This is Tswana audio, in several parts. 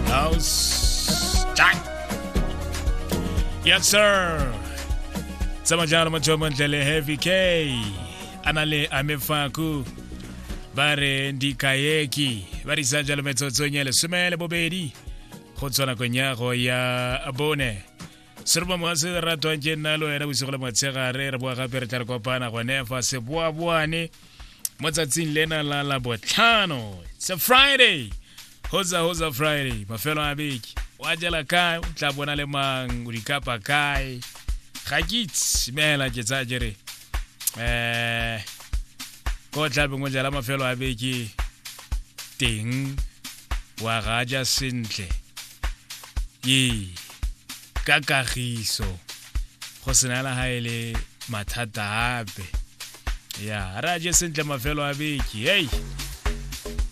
Now it's time. Yes, sir. Sama jalo mo jomo ndlele heavy K. Anale amefaku. Bare ndikayeki. Bari sa jalo metsotso nyele sumele bobedi. Go tswana konyago ya bone. se re ba mogatse le ratwang ke nna le wena bosigo le motshegare re boa gape re tla re kopana gone fa seboaboane mo tsatsing lena la la botlhano it's a friday hoza hoza friday mafelo a beke wa jela kae o tla bona le mang o dikapa kae ga ke itse meela ke tsaya ke re um ko o tlabeng o jela mafelo a beke teng wa gaja sentle ee ka kagiso go sena la ga e le mathata ape ya re a je sentle mafelo a beke hei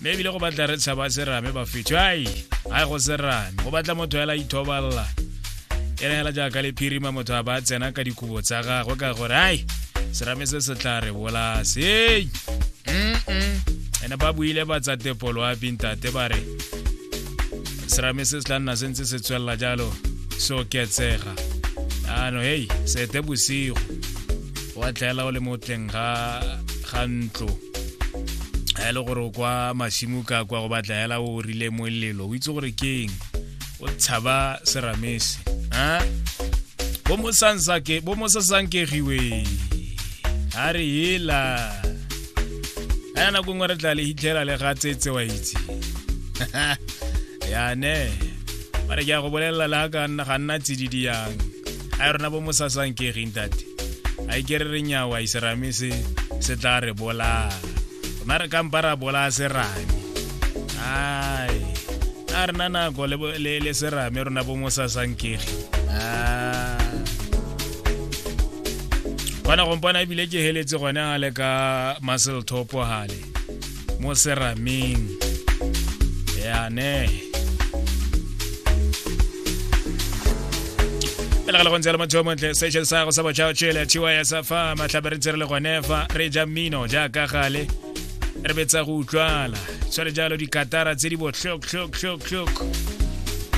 mme ebile go batla re tshaba serame ba fetho ai ga go serame go batla motho fela ithobalela e re fela jaaka le phirima motho a ba tsena ka dikobo tsa gagwe ka gore ai serame se se tla re bolase ei ene ba buile ba tsa tepolo a bintate ba re serame se se tla nna se ntse se tswelela jalo se oketsega ano hei sete bosigo wa tlaela o le mo teng ga ga ntlo ga e le gore o kwa masimo ka kwa go batla hela o rile molelo o itse gore ke eng o tshaba seramese a bo mo sansake bo mo sasankegiwe a re hela aya nako nngwe re tla le hitlhela le ga tsetse wa itse yane ba re ke ya go bolelela le ga nna tsididi yang a e rona bo mosasang ke egeng tate a e kere re nyawa iserame se se tla re bolaya rona re kampa ra bolaya serame ai a re na nako le serame rona bo mosasang kege kwana gompona ebile ke heletse gone a le ka muscle topo gale mo serameng yane pele ga le gontse le motho yo montle station sa go sa botšhao tšele thiwa ya sa fa matlhabe re ntse re le gone fa re ja mmino jaaka gale re betsa go utlwala tshwane jalo dikatara tse di botlhoktlhoktlhoktlhok